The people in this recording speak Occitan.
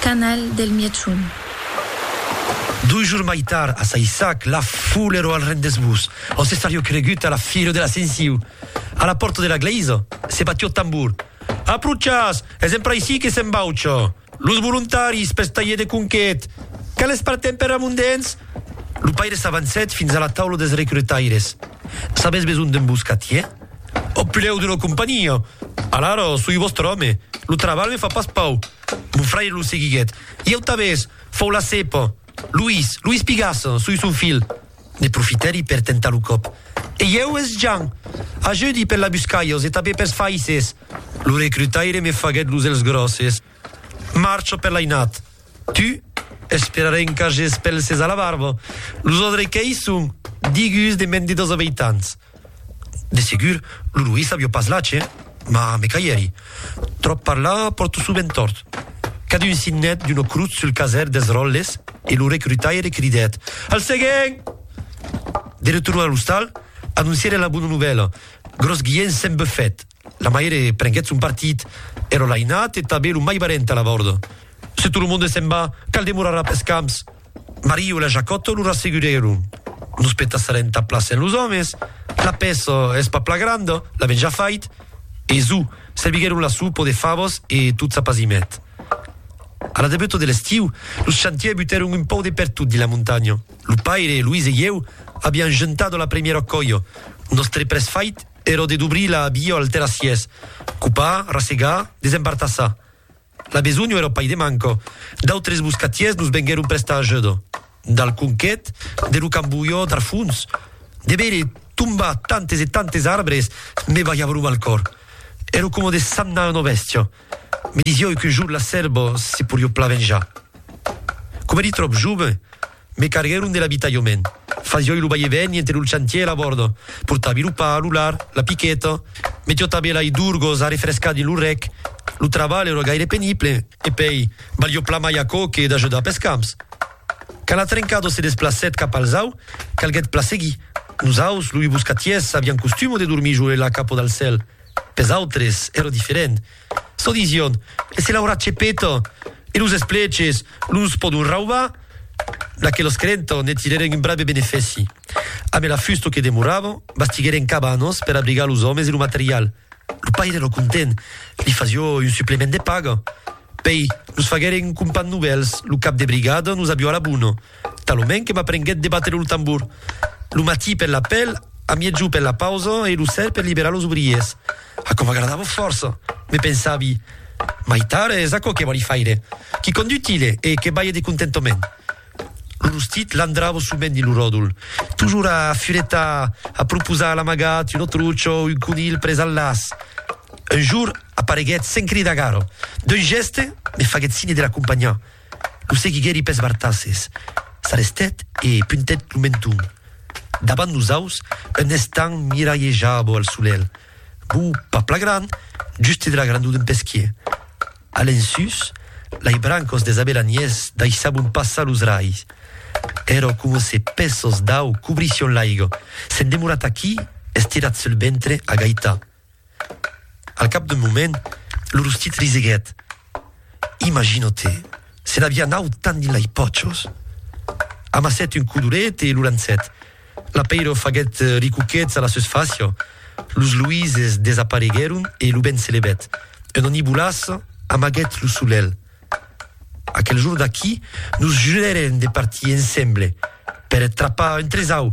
Canal del Mièchon. Dos jours mai tard, a Saissac, la foule ero al rendez-vous, on se sario cregut a la fira de l'Ascensiu. A la pòrta de la glèisa, se batió tambor. Approchatz! Es empra aicí que s'embaucha! Los volontaris pels talhers de conquet! Quales partem per Ramondens? Lo paire s'avancèt fins a la taula dels recrutaires. Sabètz besonh d'un boscatier? Au pilèu d'una companhia! Alara, soi vòstre òme. Lo trabalh me fa pas pau. Mon fraire lo seguiguèt. I au tabès, fau la cèpa. Luís, Luís Pigasse, sui son filh. Ne profitèri per tentar lo còp. E ieu, es Jan. Ajudi per la buscalhos e tabé pers faisses. Lo recrutaire me faguèt los èlhs gròsses. Marcho per l'ainat. Tu, esperarè en cages pelses a la barba. Los odrequèis son digus de mèn de dos abeitants. De segur, lo Louis avió pas lache, mas me caièri. Tròp parlar pòrto sovent tòrt. Cadun signèt d'una crotz sul caser dels ròtles e lo recrutaire cridèt, Al seguent! De retorn a l'ostal, anoncièren la bona novèla, Gròs Guiènh s'en bufèt. La maire prenguèt son partit, ero l'ainat e tanben lo mai barènt a la vòrda. Se tot lo monde s'en va, cal demorar a pes camps! Mariu e la Jacòto lo rassegurèron. Nos petassarè entà plaser a los òmes, la pèça es pas plan granda, l'avèm ja fait. E zù, serviguèron la sopa de favas e tot s'apasimèt. A la debuta de l'estiu, los chantièrs butèron un pauc de pertot dins la montanha. Lo paire, Luís e ieu avián juntat a la primièra còia. Nòstre près fait èra de dobrir la via al terrassièrs, copar, rassegar, desembartassar. La besonh o era pai de manco. D'autres boscatiers nos venguèron prestar ajuda. Dal conquet, de lo cambolhor dar fons, de veire tombar tantes e tantes arbres me balhava lo mal còr. Èro coma de sagnar una bèstia. Me disieu qu'un jorn la sèrva se porió pla venjar. Coma èri tròp jove, Me carguèron de l'abitalhament. Fasioi lo vai e vèni entre lo chantier e la bòrda. Portavi lo pa, lo lard, la piqueta. Me tiotavi lai d'urgos a refrescar dins lo rec. Lo trabalh èra gaire penible. E pei, valió plan mai aquò que d'ajudar pes camps. Quand la trencada se desplacèt cap al zau, calguèt plan seguir. Nos aus, loi boscatiers, avián costuma de dormir jo e la capa dal cèl. Pes autres èra diferent. Çò disión, se l'aurà chepeta e los espleches los pòdon raubar? D'aquelos creentò ne tirèren un brave benefèci. Ambe la fusta que demoravan, bastiguèren cabanas per abrigar los òmes e lo material. Lo paire èra content, li fasió un suplement de paga. Pei, nos faguèren un compan novèls, lo cap de brigada nos avió a la bona. Talonment que m'aprenguèt de batre lo tambor, lo matí per l'apèl, a miègjor per la pausa e lo ser per liberar los obriers. Aquò m'agradava fòrça, me pensavi. Mai tard es aquò que vòli faire, qui condutile e que balhe de contentament. Lo rostit landrava sovent dins lo ròdol, tojor a furetar, a proposar l'amagat, un otrucho, un conilh pres al las. Un jorn apareguèt sens cridar gara, d'un gèste me faguèt signe de l'acompanhar. Lo seguiguèri pes bartasses, s'arrestèt e puntèt lo menton davant los aus en estant miralhejar bo al solelh, bo pas pla gran, juste de la grandor d'un pesquier. A l'ensús, lai brancos des abelaniers daissabon passar los rais. Ero coma se pèços d'au cobrission l'aiga, s'en demorat aquí estirat sul ventre a gaitar. Al cap d'un moment, lo rostit riseguèt. Imagino-te, se n'aviá naut tant dins lei pòchos! Amassèt un codolet e lo lançèt. L'apeiro faguèt ricuquets a la seus facia, los luises desapareguèron e lo vent se levèt. Un onibolàs amaguèt lo solelh. Aquel jorn d'aquí, nos jurèrem de partir ensemble per trapar un tresau!